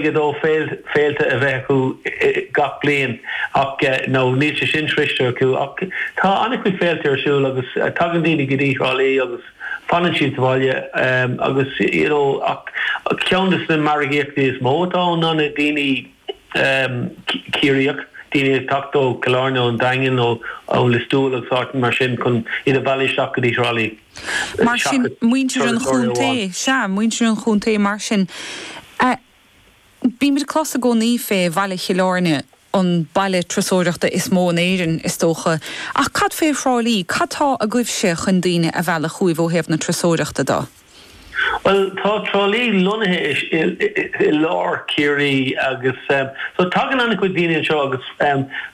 2 féilte a bheith acu gach bliain ach now níl sé sin sroichte acu ach tá an-chuid féilte ar siúl agus tagann daoine go dtí Trá Lí agus fanann siad sa bhaile agus you know ach ceann de na margaíochtaí is mó atá ann ná na daoine Ciarraíoch, daoine ag teacht ó Chill Airne, ón Daingean, ó Lios Tuathail agus áiteanna mar sin chun iad a mhealladh isteach go dtí Thrá Lí. Mar sin, muintir an chontae, sea, muintir an chontae mar sin, bímid ag clos i gcónaí fé bhaile Chill Airne, an baile turasóireachta is mó in Éirinn, is dócha, ach cad fé Thrá Lí, cad tá agaibhse chun daoine a mhealladh chugaibh ó thaobh na turasóireachta de? Bhuel, tá Trá Lí lonnaithe i lár Chiarraí agus so tagann an-chuid daoine anseo agus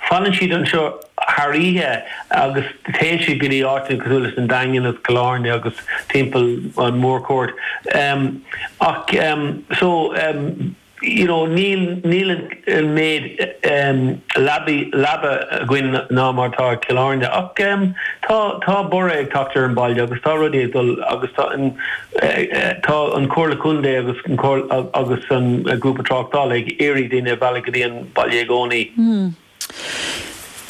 fanann siad anseo thar oíche agus téann siad go dtí áiteanna cosúil leis an Daingean agus Cill Airne agus timpeall an Mórchuaird ach so. you know níl, níl an méid leabaí, leaba againn ná mar atá i Cill Airne ach em tá, tá borradh ag teacht ar an bhaile agus tá rudaí ag dul agus tá an, tá an Comhairle Contae agus an Comhairle agus an Grúpa Tráchtála ag iarraidh daoine a mhealladh go dtí an baile i gcónaí. Hmm.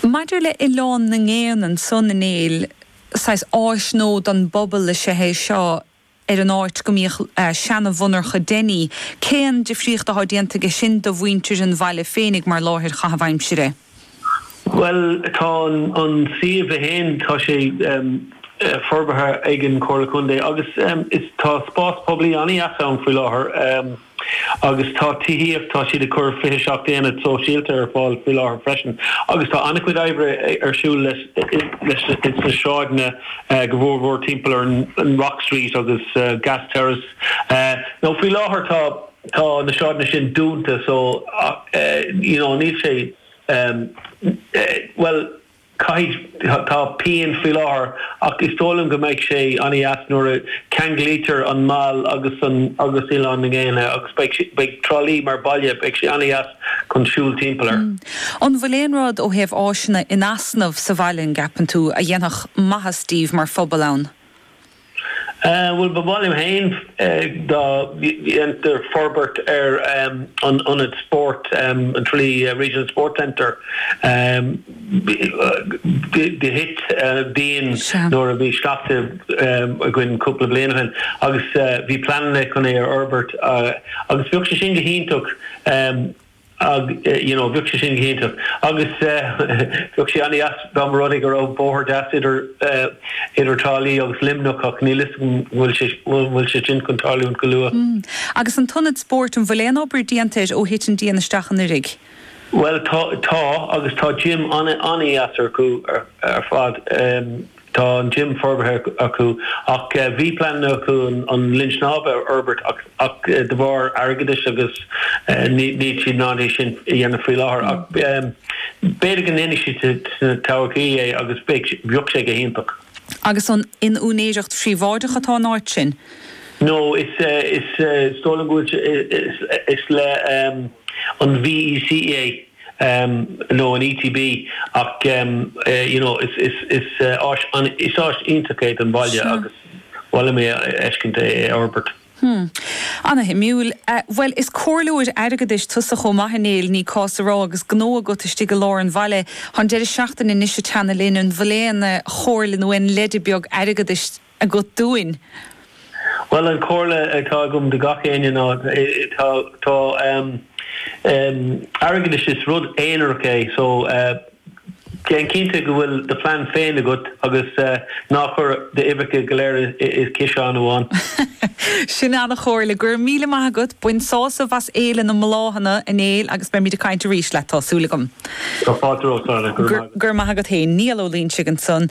Maidir le Oileán na nGéanna ansan a Néill, saghas áis nua don bpobal is ea é seo, ar an áit go mbíodh seana-mhonarcha Denny, cén difríocht atá déanta aige sin do mhuintir an bhaile féinig mar láthair chaitheamh aimsire? Bhuel, tá an suíomh é féin, tá sé forbartha ag an Chomhairle Contae agus tá spás poiblí an-dheas ann faoi láthair. Agus tá tithíocht, tá siad ag cur 27 aonad sóisialta ar fáil faoi láthair freisin agus tá an-chuid oibre ar siúl sna sráideanna go mhór mhór timpeall ar an Rock Street agus Gas Terrace. Now faoi láthair tá tá na sráideanna sin dúnta so you know níl sé bhuel, Caithfidh, tá pian faoi láthair ach is dóigh liom go mbeidh sé an-deas nuair a cheanglaítear an Meall agus an agus Oileán na nGéanna agus beidh, beidh Trá Lí mar baile, beidh sé an-deas chun siúl timpeall air. An bhfuil aon rud ó thaobh áiseanna in easnamh sa bhaile, an gceapann tú, a dhéanfadh maitheas daoibh mar phobal ann? Bhuel, ba mhaith liom féin dá ndéantar forbairt ar an ionad spóirt, an Tralee Regional Sports Centre. Do thit díon nuair a bhí sneachta againn cúpla bliain ó shin agus bhí pleananna chun é a fhorbairt agus bheadh sé sin go hiontach. Ag, you know, bheadh sé sin go hiontach. Agus bheadh sé ana-dheas dá mba rud é go raibh bóthar deas idir, idir Trá Lí agus Luimneach ach níl 'fhios agam an bhfuil sé, an bhfuil sé sin chun tarlúint go luath. Mm. Agus an t-ionad spóirt, an bhfuil aon obair déanta air ó thit an díon isteach anuiridh? Bhuel tá, tá agus tá gym ana-dheas acu ar fad. Tá an gym forbartha acu ach bhí pleananna acu an linn snámha a fhorbairt ach de bharr airgeadais agus níl siad in ann é sin a dhéanamh faoi láthair ach b'fhéidir go ndéanfaidh siad sa todhchaí é agus bheadh sé go hiontach. Agus an in úinéireacht phríobháideach atá an áit sin? No, is dóigh liom go bhfuil sé, is le an VEC é. nó an ETB ach you know is is is áis is áis iontach é don bhaile agus ba mhaith liom é a fheiscint é a fhorbairt. Hmm. Ana-shuimiúil. Bhuel, is comhairleoir airgeadais tusa chomh maith, a Néill, ní cás a rá, agus gnó agat istigh i lár an bhaile. Tá an deireadh seachtaine anois ag teannadh linn. An bhfuil aon chomhairle nó aon leide beag airgeadais agat dúinn? Bhuel, an chomhairle atá agam do gach éinne ná, tá airgeadais, is rud aonarach é, so déan cinnte go bhfuil do phlean féin agat agus ná chuir d'uibheacha go léir i ciseán amháin. Sin ana-chomhairle. Go raibh míle maith agat. Bain sásamh as Fhéile na mBláthanna, a Néill, agus beimid ag caint arís leat, tá súil agam. Tá fáilte romhat, a Dhara. Go raibh maith agat. Go raibh maith agat féin. Niall Ó Loingsigh ansan.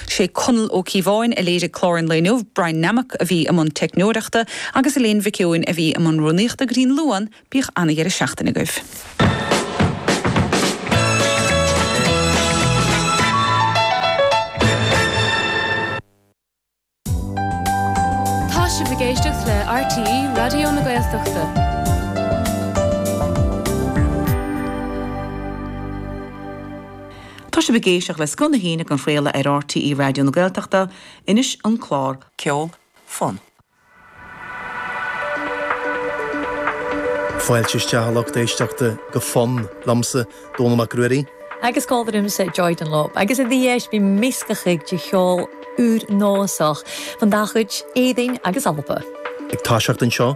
Sé Conall Ó Cíobháin a léirigh clár an lae inniu, Brian Nammock a bhí i mbun teicneoireachta agus Elaine Mhic Eoin a bhí i mbun rúnaíochta. Go dtí an Luan, bíodh ana-dheireadh seachtaine agaibh. Tá sibh ag éisteacht le RTÉ Raidió na Gaeltachta. Tá sibh ag éisteacht le Scoth na hAoine á chraoladh ar RTÉ Raidió na Gaeltachta. Anois, an clár ceoil Fonn. Fáilte isteach, a lucht éisteachta, go Fonn, liomsa, Dónall Mac Ruairí. Agus còmhla riumsa, Joy Dunlop. Agus a-rithist, bidh measgachadh de cheòl ùr-nòsach bhon dà chuid Èirinn agus Alba. Ag toiseacht anseo.